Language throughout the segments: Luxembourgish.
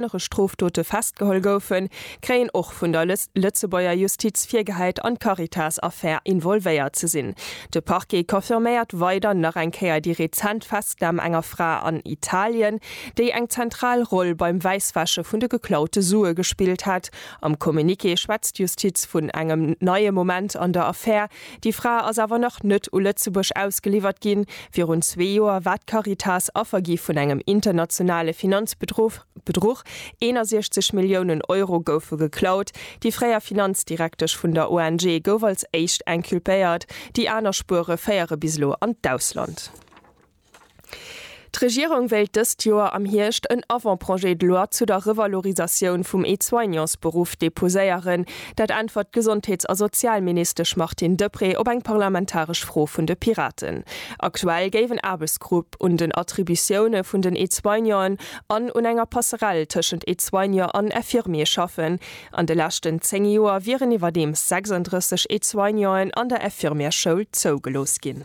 schwéierere Strofdote festgeholl goufen, kréien och vun der Lëtzebuerger Justiz virgehäit an d'Caritas-Affär involvéiert ze sinn. De Parquet confirméiert weider nach eng Kéier déi rezent Festnam enger Fra an Italien, déi eng zentral Roll beim Wäisswäsche vun de geklaute Sue gespillt hätt. Am Communiqué schwätzt d'Justiz vun engem neie Moment an der Affär, Déi Fra ass awer nach net u Lëtzebuerg ausgeliwwert ginn. Virun zwee Joer war d'Caritas Affer gi vun engem internationale Finanzbedruch. 61 Milliounen Euro goufe geklaut. Déi fréier Finanzdirektesch vun der ONG gouf als éischt inculpéiert. Déi aner Spuere féiere bis elo an d'Ausland. D'Regierung wéilt dëst Joer am Hierscht en Avant-projet de loi zu der Revalorisatioun vum Aide-soignantsberuff deposéieren. Dat äntwert d'Gesondheets a Sozialministesch Martine Deprez op eng parlamentaresch Fro vun de Piraten. Aktuell géif en Aarbechtsgrupp un den Attributioune vun den Aide-soignanten an un enger Passerell tëschent Aide-soignant an Infirmier schaffen. An de leschten 10 Joer wieren iwwerdeems 36 Aide-soignanten an der Infirmièreschoul zougelooss ginn.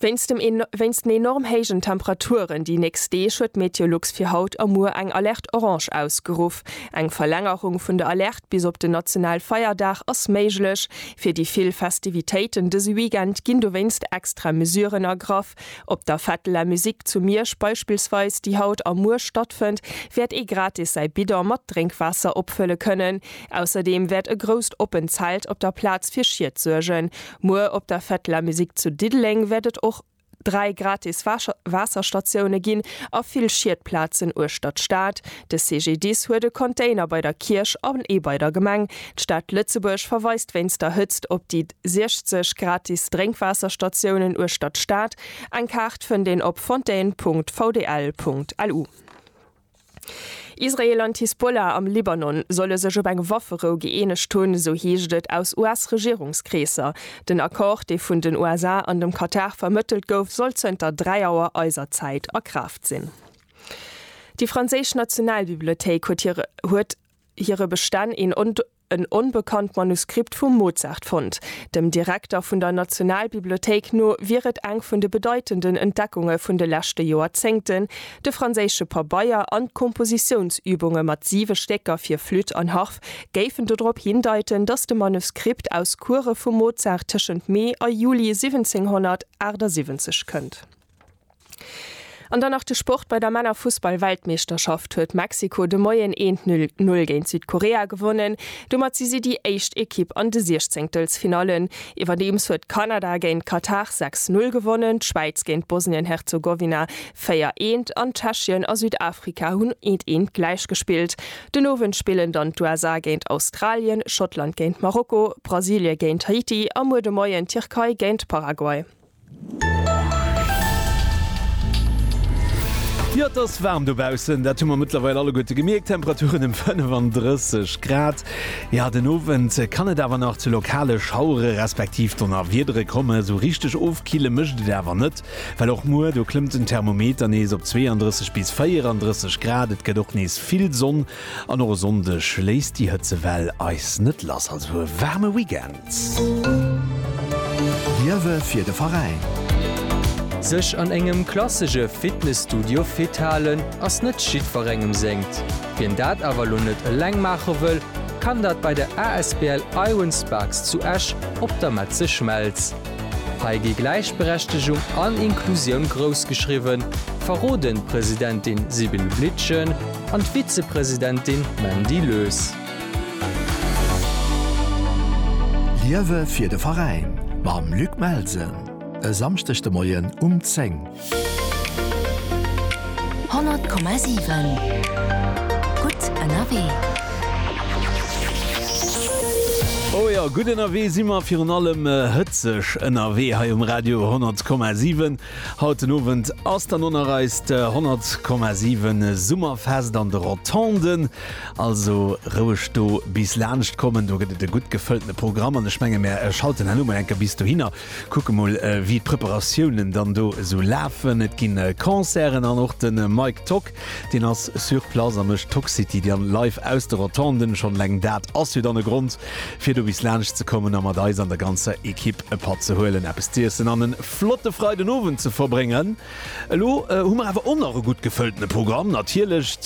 Wéinst den enorm héijen Temperaturen déi nächst Deeg huet d'Meteolux fir haut a muer eng Alerte orange ausgeruff. Eng Verlängerung vun der Alerte bis op den Nationalfeierdag ass méiglech. Fir déi vill Festivitéiten dëse Weekend ginn dowéinst extra Mesuren ergraff. Op der Fête de la Musique zu Miersch beispillsweis, déi haut a muer stattfënnt, wäert ee gratis säi Bidon mat Drénkwaasser opfëlle kënnen. Ausserdeem wäert e grousst oppent Zelt op der Plaz fir Schied suergen. Muer op der Fête de la Musique zu Diddeleng wäert et och 3 gratis Waasserstatioune ginn a vill Schiedplazen uechter d'Stad. De CGDIS huet e Container bei der Kierch an ee bei der Gemeng. D'Stad Lëtzebuerg verweist wéinst der Hëtzt op déi 60 gratis Drénkwaasserstatiounen uechter d'Stad. Eng Kaart fënnt een op fontaine.vdl.lu. Israel an d'Hisbollah am Libanon solle sech op eng Wafferou gëeenegt hunn, sou heescht et aus US-Regierungskreesser. Den Accord, dee vun den USA an dem Katar vermëttelt gouf, soll zënter 3 Auer eiser Zäit a Kraaft sinn. Déi franséisch Nationalbibliothéik huet hire Bestänn een en onbekannt Manuskript vum Mozart fonnt. Dem Direkter vun der Nationalbibliothéik no wier et eng vun de bedeitenden Entdeckunge vun de leschte Joerzéngten, de franséische Pabeier an d'Kompositiounsübunge mat siwe Stécker fir Flütt an Harf géifen dodrop hindeiten, datt de Manuskript aus Courë vum Mozart tëschent Mee a Juli 1778 kënnt. An dann nach de Sport, Bei der Männerfussball-Weltmeeschterschaft huet Mexiko de Moien een Null géint Südkorea gewonnen. Domat si si déi éischt Ekipp an de Siechzéngtelsfinallen. Iwwerdeems huet Kanada géint Katar sechs Null gewonnen, d'Schwäiz géint Bosnien-Herzegowina véier eent an Tschechien a Südafrika hunn eent eent gläich gespillt. Den Owend spillen dann d'USA géint Australien, Schottland géint Marokko, Brasilie géint Haiti a muer de Moien d'Tierkei géint Paraguay. Jo, et ass waarm dobaussen, dat hu mer mëttlerweil alleguerte gemierkt. Temperaturen ëm 35 Grad. Jo, den Owend kann et awer nach zu lokale Schauere respektiv Donnerwiedere kommen. Esou richteg ofkille mécht et awer net, well och muer do klëmmt den Thermometer nees op 32 bis 34 Grad. Et gëtt och nees vill Sonn an och e Sonndeg léisst déi Hëtzewell eis net lass. Also e waarme Weekend. D'Liewe fir de Veräin. Sech an engem klassege Fitnesstudio fit halen ass net jiddwerengem sengt. Wien dat awer lo net eleng maache wëll, kann dat bei der asbl Iron Sparks zu Esch op der Metze Schmelz. Hei gi Gläichberechtegung an Inklusioun grouss geschriwwen, verroden d'Presidentin Sibylle Blitschen an d'Vizepresidentin Mandy Lös. Liewe fir de Veräin mam Luc Melsen e Samschdeg de Moien um 10. 100,7 Gutt ënnerwee. O jo, gutt ënnerwee si mer, virun allem hëtzeg ënnerwee hei um Radio 100,7. Haut den Owend ass dann och nach eist 100,7 Summerfest an de Rotonden. Also roueg do bis laanscht kommen, do gëtt et e gutt gefëlltene Programm an ech menge mär schalten herno mol enker bis dohinner, kucke mol wéi d'Preparatiounen dann do esou lafen. Et ginn Concerten an och de Mike Tock deen ass sur place a mécht Toxcity dann live aus de Rotonden. Schonn eleng dat ass jo dann e Grond fir do bis laanscht ze kommen a mat eis an der ganzer Ekipp e Patt ze huelen, eppes z'iessen an e flotte Freidenowend ze verbréngen. Elo hu mer awer och nach e gutt gefëlltene Programm natierlech.